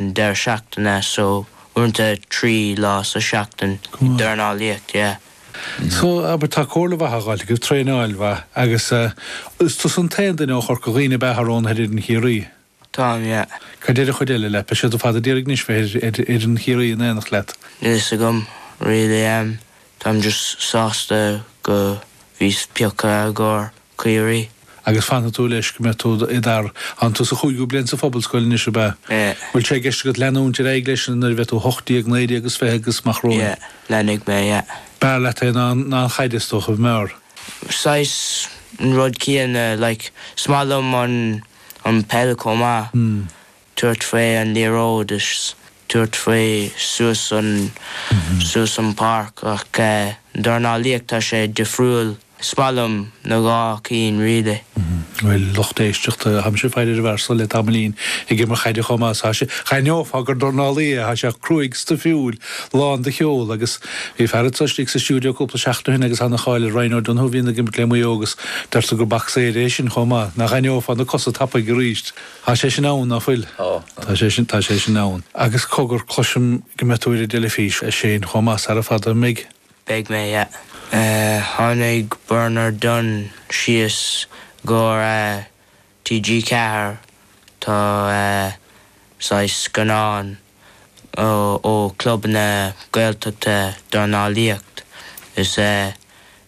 an deireadh seachtaine so uaireanta trí lá sa seachtain ag dornálaíocht, yeah. So, abair tá comhairle mhaith a dh'fháilt agaibh, traenáil mhaith agus eh is tusa an t-aon duine ó Chorca Dhuibhne a bheidh roghnaithe ar fhoireann Chiarraí? Táim, yeah. Cad deir an chuid eile leat? Beidh siad ar fad ag iarraidh anois bheith ar fhoireann Chiarraí in aonacht leat. Níl fhios agam really, em Táim just sásta go bhíos pioctha i gcóir Ciarraí. Agus fanfaidh tú leis go mbeidh tú i d'fhear. Tánn tú sa chúigiú bliain sa Phobalscoil anois, ab ea? Yeah. Bhfuil sé i gceist agat leanúint ar aghaidh leis nuair a bheidh tú hocht déag, naoi déag is fiche agus amach romhainn? Yeah, leanfaidh mé, yeah. B'fhearr leat é ná an chaid, is dócha, an mb'fhearr? Saghas an rud céanna, like, is maith liom an peil chomh maith. tabhairt faoi an liathróid is tabhairt faoi suas an, suas an páirc ach dornálaíocht tá sé difriúil. Is maith liom na dhá cinn really. Bhuel, lucht éisteachta, táimse ag faire ar an bhfear so le tamaillín, ag imirt caide chomh maith is tá sé, d'aithneofá gur dornálaí é, thá sé cruaidh stuifiúil, lán de cheol agus bhí fear anso istigh sa stiúideo cúpla seachtain ó shin agus thá ana cháil ar Ryan O Donoghue a bhíonn ag imirt le Maigh Eo agus deirtear gur bacsaeir é sin chomh maith, ná haithneofá na cosa tapaidh aríst. Tá sé sin ann, ná fuil? Tá, tá. Tá sé sin, tá sé sin ann. Agus cogar, cloisim go mbeidh tú ar an dteilifís, a Shane, chomh maith, sara fada, an mbeidh? Beidh mé, yeah. Tháinig Bernard Dunne síos i gcomhair TG4, tá saghas scannán ó Club na Gaeltachta dornálaíocht is eh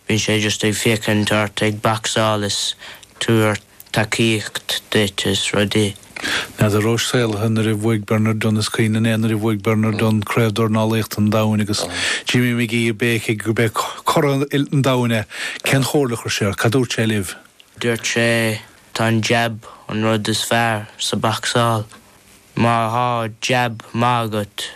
bíonn sé just ag féachaint ort ag bacsáil is tabhairt tacaíocht duit is rudaí. N'fheadar an rabhais saolaithe nuair a bhuaigh Bernard Dunne is cuimhin liom é nuair a bhuaigh Bernard Dunne Craobh Dornálaíochta an Domhain agus Jimmy Magee ag béicigh gurb é curadh an domhain é. Cén chomhairle a chuir sé ort? Cad a dúirt sé libh? Dúirt sé tá an jab an rud is fearr sa bacsáil. Má thá jab maith agat,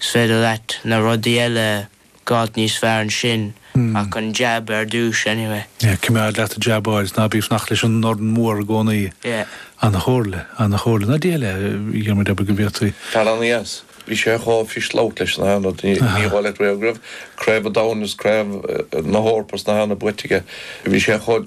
's féidir leat na rudaí eile a dh'fháilt níos fearr ansin, ach an jab ar dtúis anyway. Yeah, coimeád leat ag jabáil, 's ná bí ag fanacht leis an ndorn mór i gcónaí. Yeah. An-chomhairle, an-chomhairle. Ná dóigh leat a Dhiarmuid abair go bhféadfaí. Tar an aos. Bhí sé chomh fischlóic leis na hAonaid. Ní dhóigh leat go raibh Craobh an Domhain is Craobh na hEorpa is na hÉireann buaite aige. Bhí sé chomh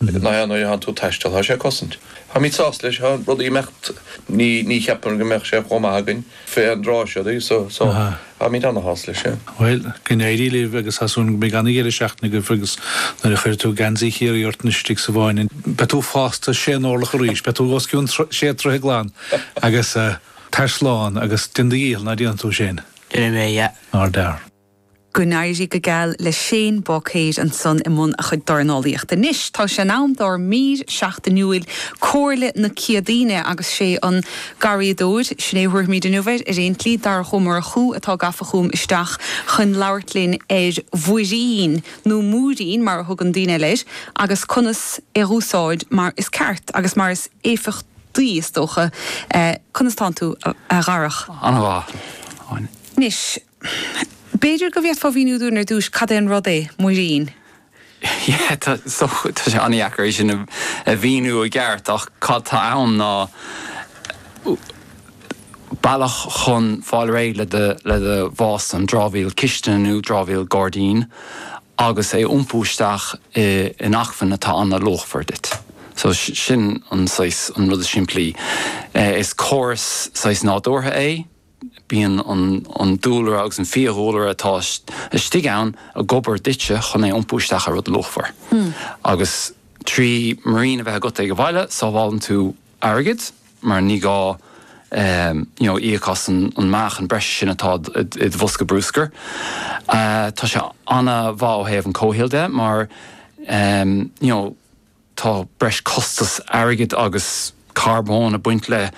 Nach é nuair a théann tú ag taisteal tá sé ag cosaint. Táimíd sásta leis na rudaí ag imeacht ní ní cheapaim go mbeadh sé chomh maith againn fé an dtráth seo de so so táimíd ana shásta leis sin. Bhuel, go n-éirí libh agus tá súil agam go mbeidh ana dheireadh seachtaine agaibh agus nuair a chuirfidh tú geansaí Chiarraí ort anois istigh sa bhfáinne beidh tú fásta sé n-orlach arís, beidh tú os cionn sé troithe glan agus tar slán agus déan do dhícheall ná déanfaidh tú sin. Déanfaidh mé, yeah. Nár dhear. Go n-éirí go geal le Shane Boucair ansan i mbun a chuid dornálaíochta. Anois tá sé in am dár mír seachtainiúil Comhairle na Céadaoine agus sé an garraíodóir sin é a thabharfaimíd inniu air ar aon tslí Darach Ó Murchú atá gafa chugam isteach chun labhairt linn ar mhuirín, nó múirín mar a thugann daoine eile air, agus conas é a úsáid mar is ceart agus mar is éifeachtaí is dócha. Conas tánn tú a Dharach? An-mhaith, Áine. Anois, B'fhéidir go bhféadfá a mhíniú dúinn ar dtúis cad é an rud é muirín? Yeah, tá sé an-dheacair é sin a mhíniú i gceart ach cad tá ann ná bealach chun fáil réidh le do bhia, an dramhaíl cistine nó dramhaíl gairdín agus é a iompú isteach in acmhainn atá an-luachmhar duit. So sin an saghas, an rud is simplí. Is córas saghas nádúrtha é. Bíonn an dúlra agus an fiadhúlra atá istigh ann ag obair duitse chun é a iompú isteach i rud luachmhar. Agus trí muirín a bheith agat ag an bhaile, sábhálann tú airgead mar ní gá you know íoc as an meáchan breise sin atá id bhosca brúscair. Tá sé an-mhaith ó thaobh an comhshaoil de mar you know, Tá breis costas airgid agus carbóin ag baint le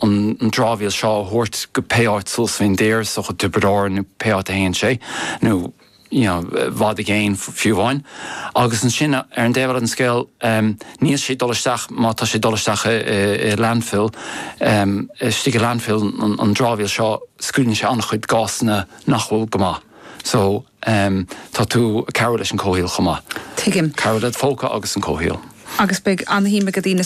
an dramhaíl seo a thabhairt go pé áit suas fén dtír, Contae Tiobraid Árann nó pé áit a théann sé, nó you know i bhfad i gcéin fiú amháin. Agus ansin ar an dtaobh eile den scéal níl sé ag dul isteach má tá sé ag dul isteach i landfill, istigh i landfill an dramhaíl seo scaoileann sé an-chuid gásanna nach bhfuil go maith. So. Em, tá tú ag cabhrú leis an comhshaol chomh maith. Tuigim. Cabhrú led' phóca agus an comhshaol. Agus beidh ana-shuim ag daoine.